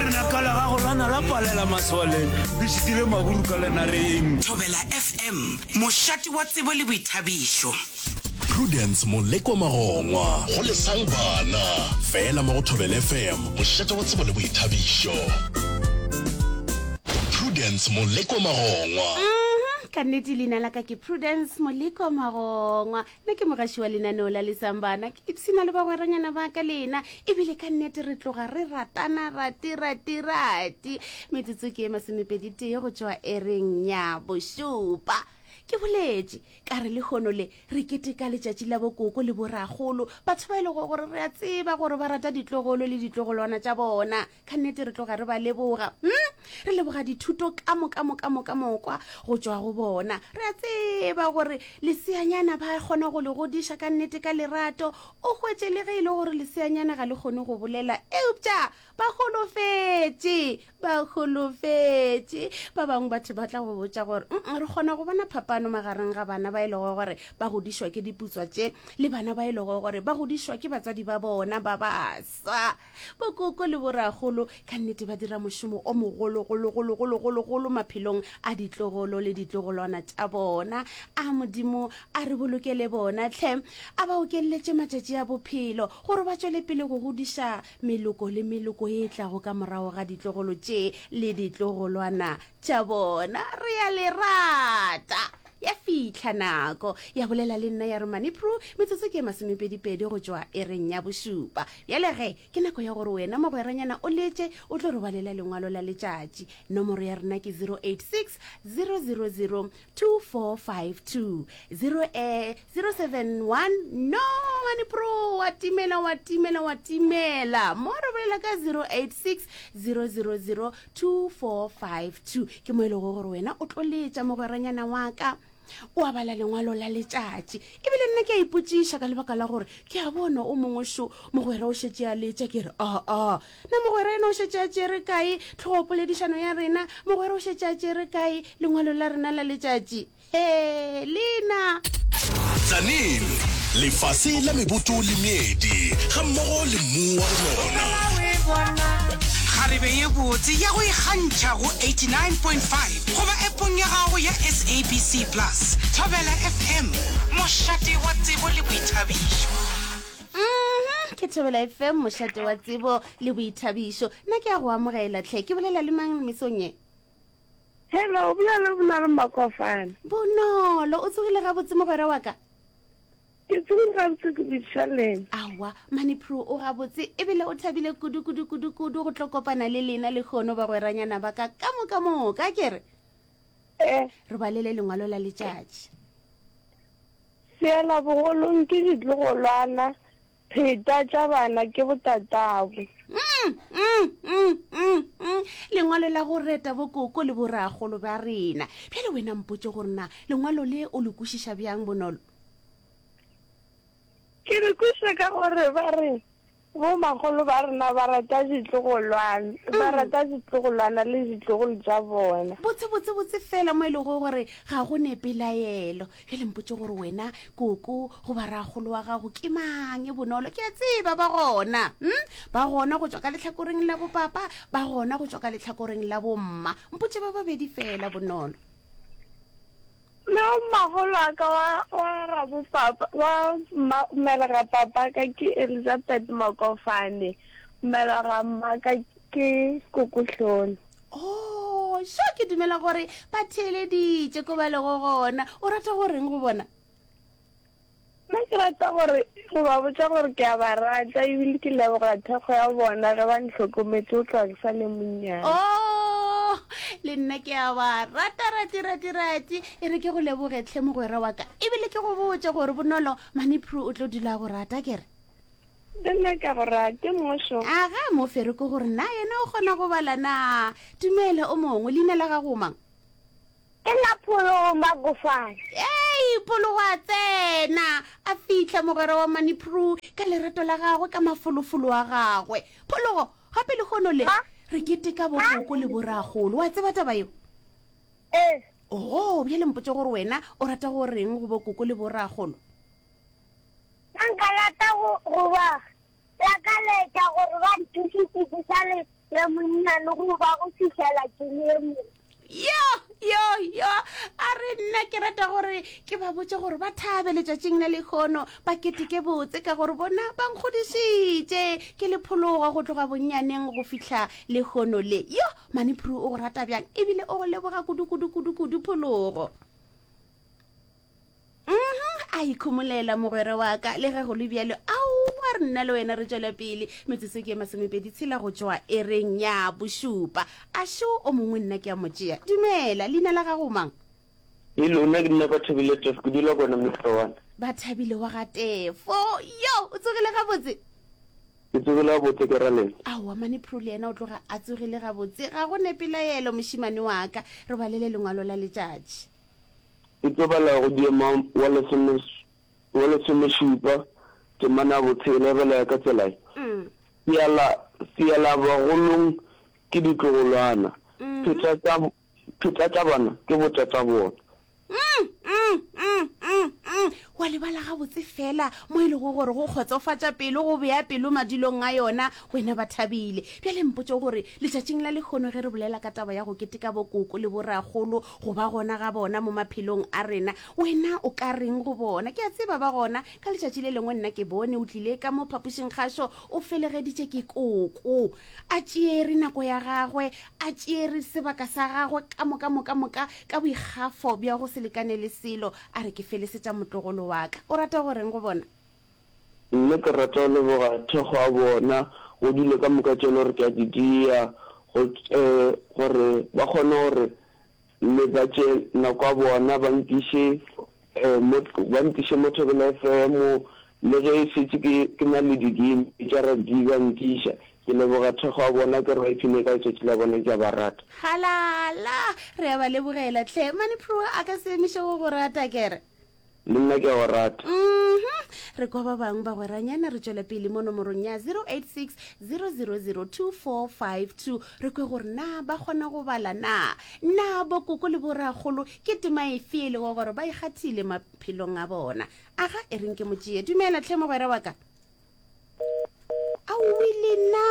Lenaka la gago la na la palela maswaleng, le šitile maburu ka lenareng. Thobela FM, mošate wa tsebo le boithabišo. Prudence Moleko Magongwa. Go lesang bana. Fela mo go Thobela FM, mošate wa tsebo le boithabišo. Prudence Moleko Magongwa. Uhmm, ka nnete leina la ka ke Prudence Moleko Magongwa. Nna ke mogaši wa lenaneo la Lisang Bana. Ke ipshina le bagweranyana ba ka lena. Ebile ka nnete re tloga re ratana rati rati rati. Metsotso ke e masomepedi tee go tšwa ereng ya bošupa. Ke boletše, ka re lehono le re keteka letšatši la bokoko le boragolo, batho ba e lego gore re a tseba gore ba rata ditlogolo le ditlogolwana tša bona. ka nnete re tloga re ba leboga hmm? re leboga dithuto ka moka moka moka mokwa go tšwa go bona re a tseba gore leseanyana ba kgona go le godiša ka nnete ka lerato o hwetše le ge e le gore leseanyana ga le kgone go bolela eupša ba golofetše ba golofetše ba bangwe batho ba tla go botša gore re kgona go bona phapano magareng ga bana ba e lego gore ba godišwa ke diputswa tše le bana ba e lego gore ba godišwa ke batswadi ba bona ba base Sa, bokoko le borakgolo ka nnete ba dira mošomo o mogologologologologologolo maphelong a ditlogolo le ditlogolwana tša bona. A Modimo a re bolokele bona tlhe, a ba okelletše matšatši a bophelo gore ba tšwele pele go godiša meloko le meloko e tlago ka morago ga ditlogolo tše le ditlogolwana tša bona. Re a le rata. Ya fihla nako, ya bolela le nna ya re, Manipru, metsotso ke ye masomepedipedi go tšwa ereng ya bošupa. Bjale ge, ke nako ya gore wena mogweranyana o letše, o tlo re balela lengwalo la letšatši. Nomoro ya rena ke 086 000 2452. 0e071 No, Manipru, wa timela, wa timela, wa timela. Mo re bolela ka 086 000 2452 ke mo e lego gore wena o tlo letša mogweranyana wa ka o a bala lengwalo la letšatši ebile nna ke a ipotsiša ka lebaka la gore ke a bona o mongwe šo mogwera o šetše a letša ke re aa ah, ah. na mogwera ena o šetše a tšere kae tlhogopoledišano ya rena mogwera o šetše a tšere kae lengwalo la rena la letšatši Hee, Lena! Tlaneng, lefase la meboto le meedi, ga mmogo le mmu wa go nona. Kgarebe ye botse ya go ikgantšha go 89.5 goba epong ya gago ya SABC Plus. Thobela FM, mošate wa tsebo le boithabišo. Mmhum ke thobela fm mošate wa tsebo le boithabišo nna ke ya go amogela tlhe ke bolela le mang mesong e Hello, o bua le bona re Makofana. Bonolo, o tsogile gabotse mogwera wa ka? Ke tsogile gabotse ke botša lena. Awa, mane Pro o gabotse ebile o thabile kudu kudu kudu kudu go tlo kopana le lena le kgono bagweranyana ba ka ka moka moka ke re. Eh. Re balele lengwalo la letšatši. Seela bogolong ke ditlogolwana. Pheta tša bana ke botatabo. Mmmmmm lengwalo la go reta bokoko le boragolo ba rena. Bjale wena mpotše gore na lengwalo le o le kwešiša bjang bonolo? Ke le kwešiša ka gore ba re bomagolo ba rena ba rata ditlogolwana, ba mm. rata ditlogolwana le ditlogolo tša bona. Botse botse botse fela mo e lego gore ga go ne pelaelo. ge le mpotse gore wena koko goba ragolo wa gago ke mang e bonolo ke a tseba ba gona um ba gona go tswa ka letlhakoreng la bopapa ba gona go tswa ka letlhakoreng la bomma mpotse ba babedi fela bonolo le mmagolo a ka wa rabopapa wa mmelera papa ka ke elizabeth makofane mmelera mmaka ke kokotlholo o sho ke dumela gore ba theeleditše ko ba lego gona o rata go reng go bona nna ke rata gore go ba botsa gore ke a ba rata ebile ke leboga thekgo ya bona ge ba ntlhokometse o tloga ke sa le monnyane o oh, le nna ke a ba rata rati rati rati e re ke go lebogetlhe mogwera wa ka ebile ke go botse gore bonolo manepro o tlo dula go rata kere Ke nyaka go ra ke mošo. A ga a mo fere ke gore na yena o kgona go bala na? Tumelo o mongwe, leina la gago mang? Ke la Phologo Magofana. Ei, Phologo a tsena, a fihla mogwera wa Manipru ka lerato la gagwe ka mafolofolo a gagwe. Phologo, gape le kgono le, re keteka bokoko le boragolo, wa tseba taba yeo? Ee. Oo, bjale mpotše gore wena o rata go reng go bokoko le boragolo? Nna nka rata go, go ba lakaletša gore ba ntušitše ke sa le le monnyane go ba go fihlela ke le mo. Yo, yo, yo, a re nna ke rata gore ke ba botse gore ba thabe letšatšing la lekgono ba keteke botse ka gore bona ba nkgodišitše ke le phologa go tloga bonnyaneng go fihla lekgono le. Yo, mane Phuru o go rata bjang ebile o go leboga kudu-kudu-kudu-kudu phologo. Mhm, a ikhomolela mogwera wa ka le ge go le bjalo aowa re nna le wena re tšwela pele metsotso ke ye masomepedi tshela go tšwa e reng ya bošupa a šo o mongwe nna ke ya mo tšea dumela leina la gago mang le lona ke nna bathabile tefo ke dula kona mefewana bathabile wa ga tefo yo o tsogile gabotse ke tsogile gabotse ke ra lena aowa mane pro le yena o tloga a tsogile gabotse ga go nepelaelo mošimane wa ka re balele lengwalo la letšatši E tlo bala go diema wa lesome, wa lesomešupa, temana ya botshela e bala ya ka tsela ye, seala, seala bagolong ke ditlogolwana, phetata, phetatabana ke botatabona. Wa lebala gabotse fela mo e lego gore go kgotsofatša pelo, go bea pelo madulong a yona, wena ba thabile. Bjale mpotše gore, letšatšing la lehono ge re bolela ka taba ya go keteka bokoko le borakgolo go ba gona ga bona mo maphelong a rena, wena o ka reng go bona? Ke a tseba ba gona. Ka letšatši le lengwe nna ke bone o tlile ka mo phapošing kgašo o felegeditše ke koko. A tšeere nako ya gagwe, a tšeere sebaka sa gagwe ka moka moka moka ka boikgafo bja go se lekane le selo, A re, Ke felesetša motlogolo wa ka. O rata go reng go bona? Nna ke rata go leboga thekgo ya bona, go dilo ka moka tše e le gore ke a di dia, go, e, gore ba kgone gore le ba tše nako ya bona ba nkiše, e, mo, ba nkiše mo Thobela FM, le ge e šetše ke, ke na le di-game tša rugby ba nkiša. Ke leboga thekgo ya bona, ke re ba ipshine ka letšatši la bona, ke a ba rata. Halala! Re a ba lebogela hle. Mane Pruo a ka se emiše go go rata, ke re. Le nna ke a go rata. Uhum. Re kwa ba bangwe bagweranyana re tšwela pele mo nomorong ya 086 0002452 re kwe gore na ba kgona go bala na. Na bokoko le borakgolo ke tema efe e lego gore ba e kgathile maphelong a bona? Aga e reng ke mo tšee. Dumela hle mogwera wa ka. a o wile na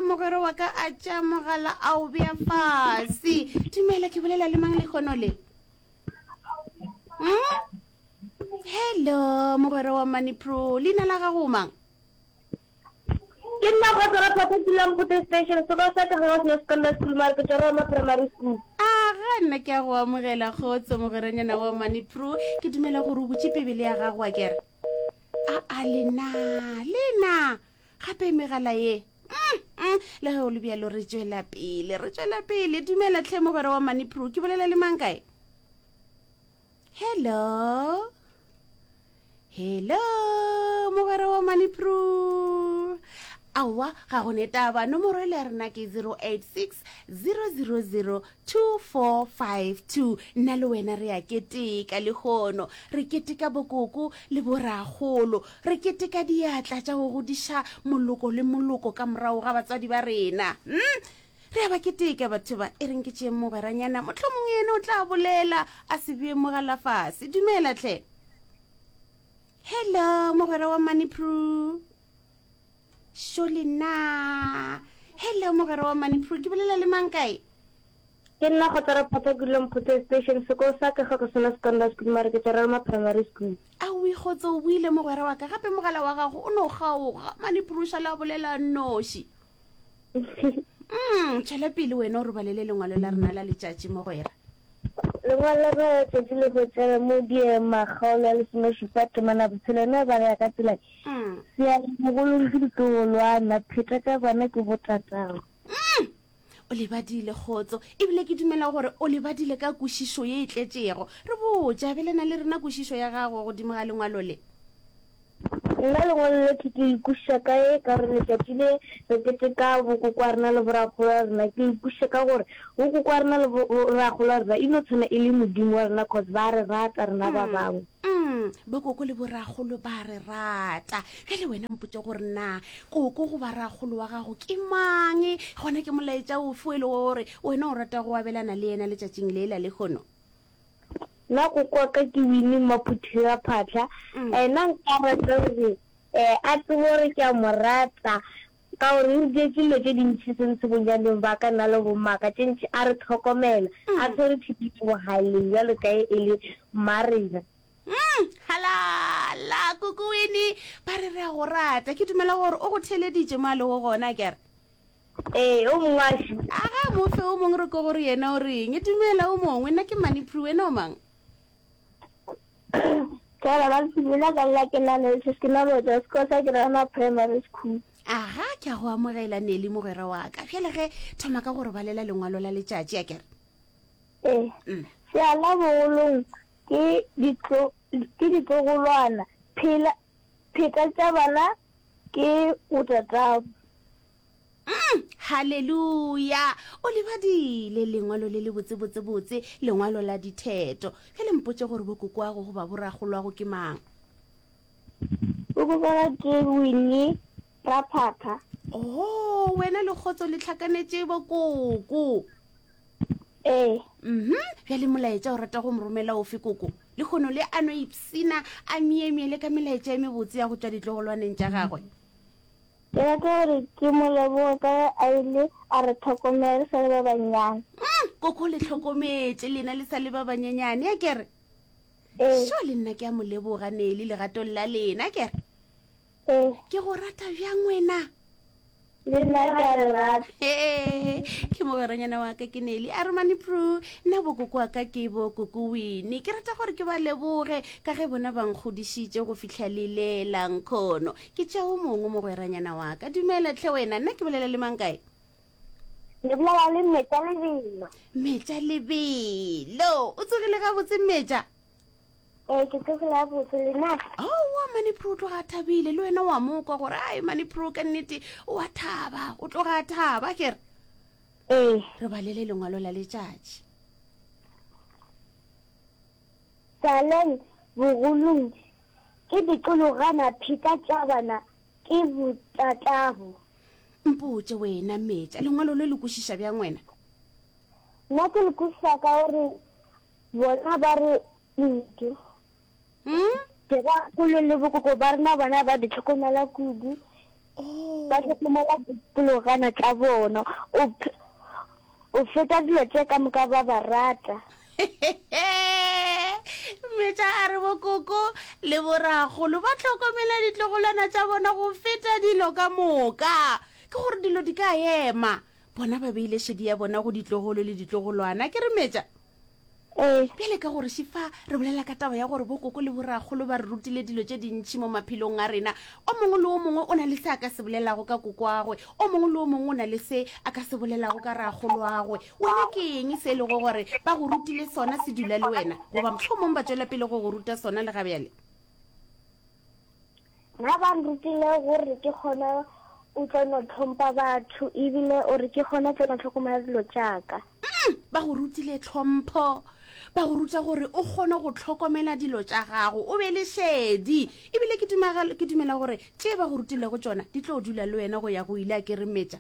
mogwera wa ka a tša mogala a o bea fase dumela ke bolela le mang lekgono le hmm? hello mogwera wa money pro leina la gago mang ke nna go tsara papa dulang go station se ba sa ka go se ska nna school mara ke tsara ma primary school a ga nna ke a go amogela kgotso mogweranyana wa money pro ke dumela gore o botse pebele ya gago a kere a a lena lena gape megala ye mm, mm, le ge o le bjalo re tswela pele re tswela pele dumela tlhe mogwera wa manipro ke bolela le mang kae hello hello mogwera wa manipro aowa ga go netaba nomoro e le ya rena ke 086 000 2452 Nna le wena re a keteka lehono, re keteka bokoko le borakgolo, re keteka diatla tša go godiša moloko le moloko ka morago ga batswadi ba rena. Umm! Re a ba keteka batho ba. E reng ke tšee mogweranyana, mohlomongwe yena o tla bolela, a se bee mo galafase. Dumela hle. Hello, mogwera wa Maniprue. Sholi na hello mogere wa manipro ke bolela le mang kae ke nna go tsara phata kulong photse station seko sa ka ga go sena secondary school mare ke tsara ma primary school a o ikgotse o buile mogwera wa ka gape mogala wa gago o no gaoga maniprosa la bolela noši mm tšwele pele wena o re balele lengwalo la rena la letšatši mogwera Lengwalo ge tšatši le hwetša mo di ye makgaolo a lesomešupa temana botshelo ne ba re ya ka tsela seale mogolong ke ditlogolwana pheta tša kwana ke botatago. O lebadile kgotso ebile ke dumela gore o lebadile ka kwešišo ye e tletšego. Re botše, abelana le rena kwešišo ya gago godimo ga lengwalo le. Nna lengwalo le ke le kwešiša kae ka gore letšatši le re keteka bokoko wa rena le borakgolo wa rena, ke le kwešiša ka gore bokoko wa rena le borakgolo wa rena e no tshwana e le Modimo wa rena cause ba re rata rena ba bangwe. Mm, bokoko le borakgolo ba re rata. Bjale wena mpotše gore na koko goba rakgolo wa gago ke mang, gona ke molaetša ofe o e le gore wena o rata go abelana le yena letšatšing le la lekgono? Nna go kwa ka ke Winnie Maphuthegaphatlha. Nna nka rata gore a tsebe gore ke a mo rata ka gore o re dietse dilo tše dintšhi se ntse bonyaneng ba ka nna le bommaka tše ntšhi. A re tlhokomela, a tshwere thipi mo bogaleng bjalo ka ge e le mma rena. Halala! Kuku Winnie, ba re re a go rata. Ke dumela gore o go theeleditše mo a lego gona, ke a re? Ee, o mongwe a šu. A ga mo fe o mongwe re ko gore yena o reng. Dumela o mongwe, nna ke Mani Pru, wena o mang? Tsala ba Sibila ka nna ke na le se ke na lo ja sekolo sa Kirana Primary School. Aga ke a go amogela Neli mogwera wa ka. Bjale ge thoma ka gore balela lengwalo la letšatši a kere. Ee. Mm. Seala bogolong ke ditlo ke ditlogolwana phela Theta tša bana ke botatago. Umm! Haleluya! O le badile, Lengwalo le lebotse-botse-botse, Lengwalo la ditheto. Bjale mpotše gore bokokoago goba boragolwago ke mang? Bokokoago ke Winnie Ra phakha. Ho, wena le kgotso le tlhakanetše bokoko. Ee. Mhm, bjale molaetša o rata go mo romela ofe koko? Le kgono le a no ipsina a miemie le ka melaetša e mebotse ya go tšwa ditlogolwaneng tša gagwe. Ke rata gore ke mo leboge ka ge a ile a re tlhokomela re sa le ba bannyane. Mm, koko le tlhokometše lena le sa le ba banyenyane, a kere? Ee. Sho, le nna ke a mo leboga, Neli, legatong la lena, a kere? Ee. Ke go rata bjang wena? Le nna ke a le rata. Ee, ke mogweranyana wa ka ke Neli. A re mane Prue, nna bokoko wa ka ke bo koko Winnie. Ke rata gore ke ba leboge ka ge bona ba nkgodisitše go fihla le le la nkhono. Ke tša o mongwe mogweranyana wa ka. Dumela tlhe wena, nna ke bolela le mang kae? Le bolela le Mmetša Lebelo. Mmetša Lebelo. O tsogile gabotse Mmetša? Ee, ke tsogile botse lena. Aowa oh, Manipro o tloga a thabile le wena wa mo kwa gore ai Manipro ka nnete o a thaba o tloga a thaba kere. Ee. Re balele lengwalo la letšatši. Saleng bogolong ke dikologana pheta tšabana ke botatabo. Mpotše wena metša lengwalo le le kwešiša bjang wena? Nna ke le kwešiša ka gore Bona ba re kudu. Mm? Ke ba kolo le bokoko ba rena bona ba di tlhokomela kudu. Oh. Ba tlhokomela dipologana tsa bona. O ph- o feta dilo tse ka moka ba ba rata. metša a re bokoko le boragolo ba tlhokomela ditlogolwana tša bona go feta dilo ka moka ke gore dilo di ka ema bona ba beile šedi ya bona go ditlogolo le ditlogolwana ke re metša ee bjale ka gore šifa re bolela ka taba ya gore bokoko le borakgolo ba re rutile dilo tše dintšhi mo maphelong a rena o mongwe le o mongwe o na le se a ka se bolelago ka kokoagwe o mongwe le o mongwe o na le se a ka se bolelago ka ragoloagwe wena ke eng se e lego gore ba go rutile sona se dula le wena goba motlho mongwe ba tswela pele go go ruta sona le gabjale Na ba nrutile gore ke gona o tlo no tlhompa batho ebile o re ke gona tlo no tlhokomela dilo tšaka? Umm, ba go rutile tlhompho. Ba go ruta gore o kgone go tlhokomela dilo tša gago, o be le šedi. Ebile ke dumela gore tše ba go rutilego tšona di tlo dula le wena go ya go ile a keremetša.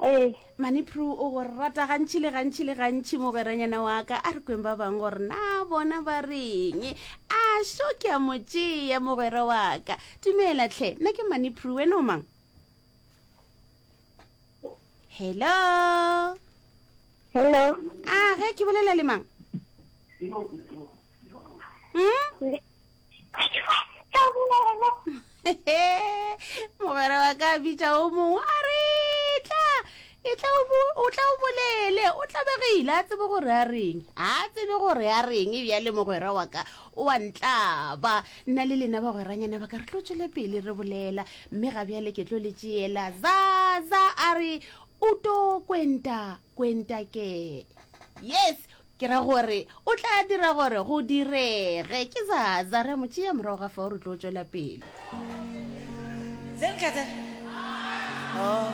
Ee. Manipru o go rata gantši le gantši le gantši mogweranyana wa ka a re kweng ba bangwe gore na bona ba reng a šo ke a mo tšea mogwera wa ka dumela tlhe nna ke manipru wena o mang hello hello a ge ke bolela le mang hmm? mogwera wa ka bitša o mongwe a re tla e tla o tla o bolele o tlabegile a tsebe gore a reng a tsebe gore a reng e bjale mogwera wa ka o a ntlaba nna le lena bagweranyana ba ka re tlo tswele pele re bolela mme ga bjale ke tlo le tšeela zaza a re o to kwenta kwenta ke yes Ke ra gore O tla dira gore go direge. Ke za, za re, Mo tšea morago ga fao, re tlo tšwela pele. Tse nka tse. Oh.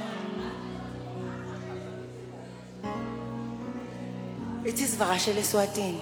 It is Vagashele Swatini.